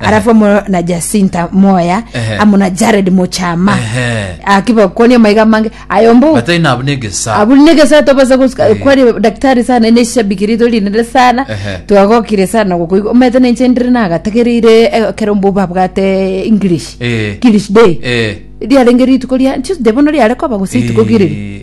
arafu amo na jacinta moya Ehe. amo na jared mochama Ehe. akibakoni amaiga mange ayombo batari nabo negesa abuli negesa tobasa gosika Eh. kwari daktari sana ine shabiki rito rinene sana Ehe. twagokire sana gokoigwa omanyete nenche ndire nagatagereire eh, kero mbo babwate english Eh. english day Eh. riarenge rituko ria tuesday bono riare koba gose rituko kiriri Eh,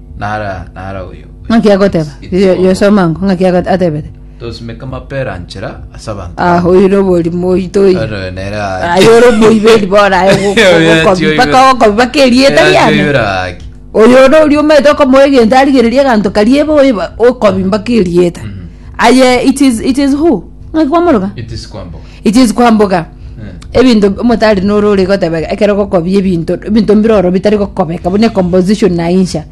Nara, nara oyo. ng'aki agoteba It's Yo- all. yosoma ngo ng'aki ago- atebete Tosimeka mapera nchera ase abanto. ah oire oborimo oito oire Ero nere aye. aye ore omoiberi bora aye go- go- Oyo gokobi- atioibera. mpaka okobi mpaka erieta Era riane atioibera haki. oyo ore oria omete okomoa egento arigereria eganto kariebe oiba okobi mpaka erieta aye it is, it is who ng'aki kwamoroka It is kwamboka. Ichichi kwamboga ebinto omotari noro ore gotebeka ekero ogokobia ebinto ebinto mbire oro bitari gokobeka buna ecomposition naincha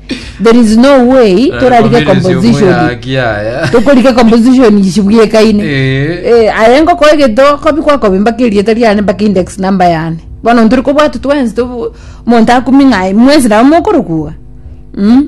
there is no way torarige ecomposition tokorika ecomposition ichi bwekaine Eh, aye ngokoa egento kobi kwakobi mpaka erieta riane mpaka index number yane bono ntore kobwatwa twensi tobo omonto akumia ng'ai mwensi nabo mokorokwa iga Mm.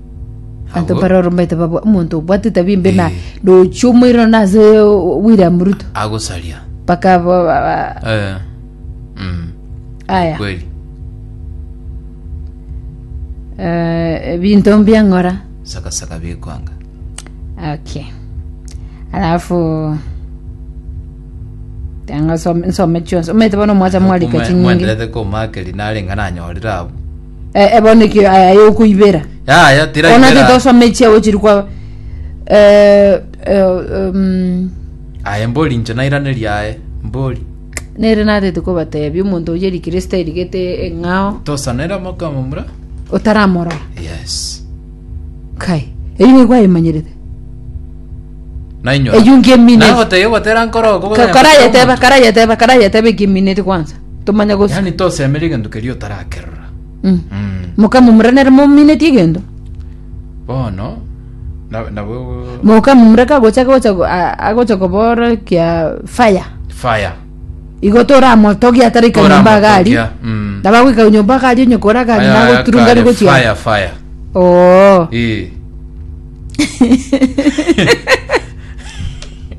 Abanto Agwo- baroromete babwa omonto obwate etabia embe na Eh. rochi omoirano na ase o- o- William Ruto agosaria mpaka ba- ba- ba- Eh. Mm. aya kweli Eh, ebinto mbiang'ora sakasaka bikwanga okay alafu tanga nsome chionsi omete bono mwacha mwarika chinyingi komakerinarenga nanyorire abo Eh, eh, bono ekio aya yokoibera Yaya, ona tiraibera. titosoma echiago chiri kwa eh, eh, um, Aye mbori inche nairaneria aye. Mbori. nere natete kobatebi omonto oye rikristo erigete eng'ao Tosanera mokama mura. otaramorora Yes. kai eyi nigo ayemanyerete Nainyora. Eyungi emine. Naye goteba gotera nkoro. Ka- karayeteba karayeteba karayeteba ekimineti kwanza Tomanye gose. Yaani tosemera egento keria otarakerora. Mm. Mm. Mokamomura nere mominetie egento. Bono na- nabo Mokamomura kagocha gocha go- a- agocha kobora kia fire. fire. Igo toramotogia atari kanyomba gari. Toramotogia, mm. Nabagwika nyomba gari onyokora gari Aya- nago aya turunga kare, rigochia. Fire, fire. Oo. Eh.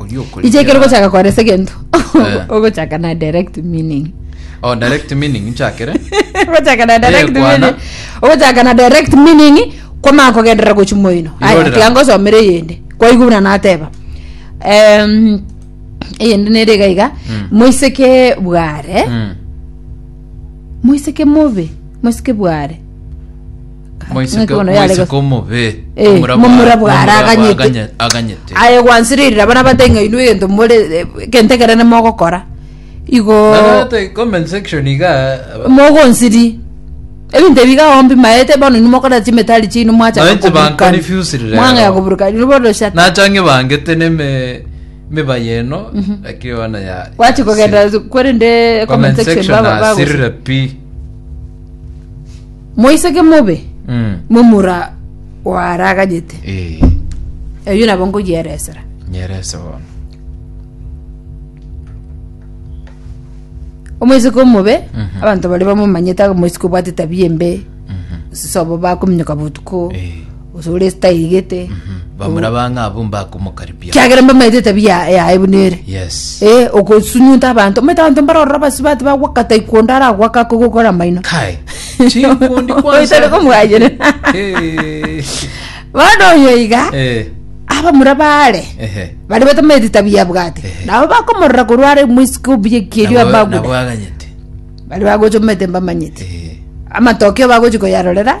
oria okorikera- iche ekero ogochaka koresa egento Eh. ogochaka na direct meaning Oh, direct meaning nchakere ogochaka na direct Eyekwana. meaning ogochaka na direct meaning kwamana kogenderera gochi moino aya Irorera. tiga ngosomere eyende kwaigwa buna nateba Em, eyende nere iga iga Mm. moiseke bware Mm. moiseke mobe moiseke bware Moiseke Ng'ekono yare moiseke gose- omobe. Eh, omorabwo momura ara- bwara omorabwo aganyete. aganye- aganyete. aye gwansiririre abana bate ng'a inwe egento more egento ekere nimogokora igo Narete comment section iga aba- mogonsiri ebinto ebi iga ombi maete bono inwe mokora chimetari chiaino mwachaka Maete koburukana. banconfused rero. mwang'ea koburukana inwe bono shata nachange bangete neme mibaye eno lakini ona ya gwachi ya- kogenda kwerende comment section ba- bagose. nasirire pi Moiseke mobe Mm. momura oaraganyete. Eh, Eyio nabo nkoyieresera. nyerese bono. Omoiseke omobe Mhm. abanto baria bamomanyete moiseke obwate tabia embe Mhm. sobo bakominyoka botuko Eh. gose ore taigete bamura bang'a abwo mbakomokaribia kiagera mbamaete etabia ya- yaye buna ere yes Eh, okosunyunta abanto omanyete abanto mbarorora basibati bagwakata ikondo ara agwaka akogokora amaino kai chikundi Oitare komwayire. Eh, bono oyo iga eh, abamura bare ehe. bari batamete tabia bwate Ehe. nabo bakomorora korware mwisiko obuya kierio Nabo- nabo abaguda aganyete bari bagochomete mbamanyete Eh, amatokeo bagochi koyarorera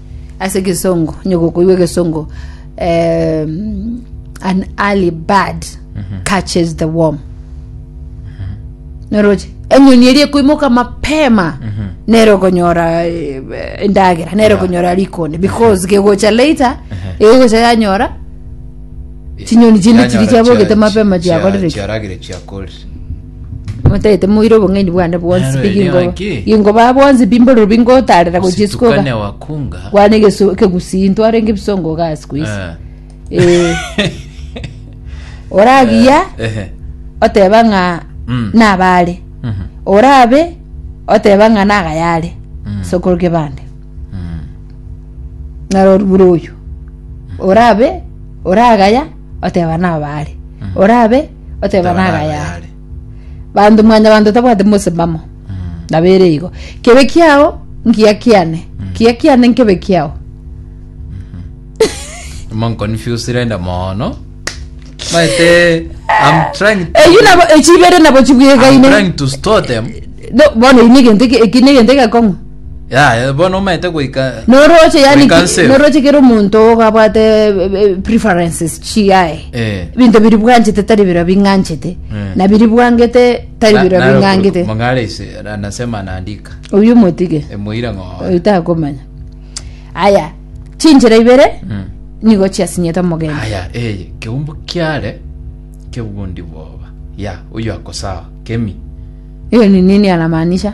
Ase egesongo onye gokoigwa egesongo um, an early bird catches the worm noroche enyoni eria ekoimoka mapema nero konyora eh, endagera nero Yeah. konyora rikonde because kegocha later egocha yanyora Chinyoni chinde chiri Yanyora chiabogete chia- mapema chia- chiakorire ki? chiaragire chiakorire Motagete moire obong'aini bwane bwonsi, Naro pi erio gingo- ake. gingoba bwonsi pi mbororo pi ngotaarera gochia isiko iga. Ositukane wakunga. Kwane egesu- ekegusii ntwarenge ebisongo iga ase ku isi. Ah. Eh, oragiya Ehe. oteba ng'a Mm. nabaare Mhm. orabe oteba ng'a nagayare Mm. sokoroke bande Mm. naroribure oyo orabe oragaya oteba nabaare orabe oteba Oteba nagayare nagayare. banto mwanyabanto tabwate mosimamo nabo ere igo kebe kiao ngiya kiane kiya kiane nkebe kiao monconfuse rende mono maete I'm trying to, eyu nabo echibere nabo I'm chibwegaine trying to store them No, bono ini egento eki- eki negento egekong'u Yaya, bono omanyete goika Noroche yani goika ki- nseo. noroche kero omonto ogabwate eh, eh, preferences chiaye Eh. ebinto biri bwanchete tari bira bing'anchete Eh. na biri bwangete tari Na- bira naro bing'angete kuru- mong'are ise anasema anaandika oyu motige emoira ng'oo oyu takomanya aya chinchera ibere Mm. nigo chiasinyete omogeni haya eye keumbu kiare kebundi bwoba ya oyo akosawa kemi hiyo ni nini anamaanisha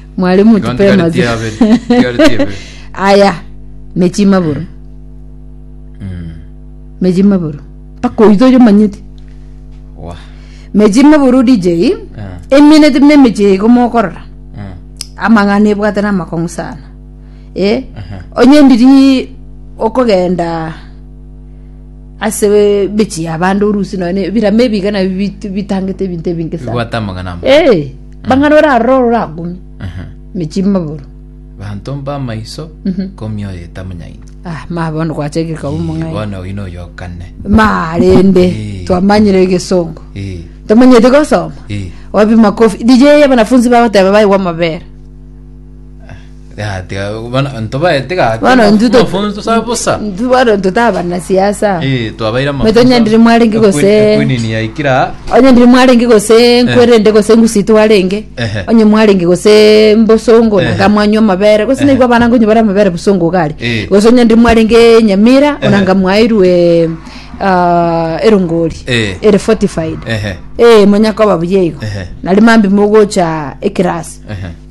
mware Igo motupe ntigareti amatu yabere, ntigareti yabere. aya mechi maboro Mm. mechi maboro mpaka oito oyo manyete Wa. mechi maboro dj Eh, eminete muna emechi eye komokorora eh, amang'ana ebwate namakong'u sana e ehe. onye ndiri okogenda ase we- mechi yabande orusi nonye birame ebiga nabio bit- bitangete ebinto ebinge sana Bibwate amagana amo. Eh, Bang'ana orarore oragumie emechie emaboro. Banto mbamaiso komioyo etamanyaini. Ah, ma bono gwachakire koba omong'aini. Bono oino oyokane. Ma rende Eh. twamanyire egesongo. Eh, Tomanyete gosoma. eh. Wapi makofi? DJ abanafunzi bagoteba baigwa amabera. Gati, ah, bono ntobaete gati. Bono maf- ntuto- mafunzo sa bosa. ntu- bono ntotaba na siasa Eh, twabaira Mete onye ndiri mwarenge gose- Queen yaikira. onye ndiri mwarenge gose nkwerende gose ngusito arenge Ehe. onye mwarenge gose mbosongo Ehe. nanga mwanywa amabere gose naigwa abana ngonye bare amabere bosongo gari Eh. gose onye ndiri mwarenge nyamira Ehe. onanga mwairwe ah, erongori Eh. ere fortified Ehe. eh monyakoba buyeigo Ehe. nari mambi mogocha ekirasi Ehe.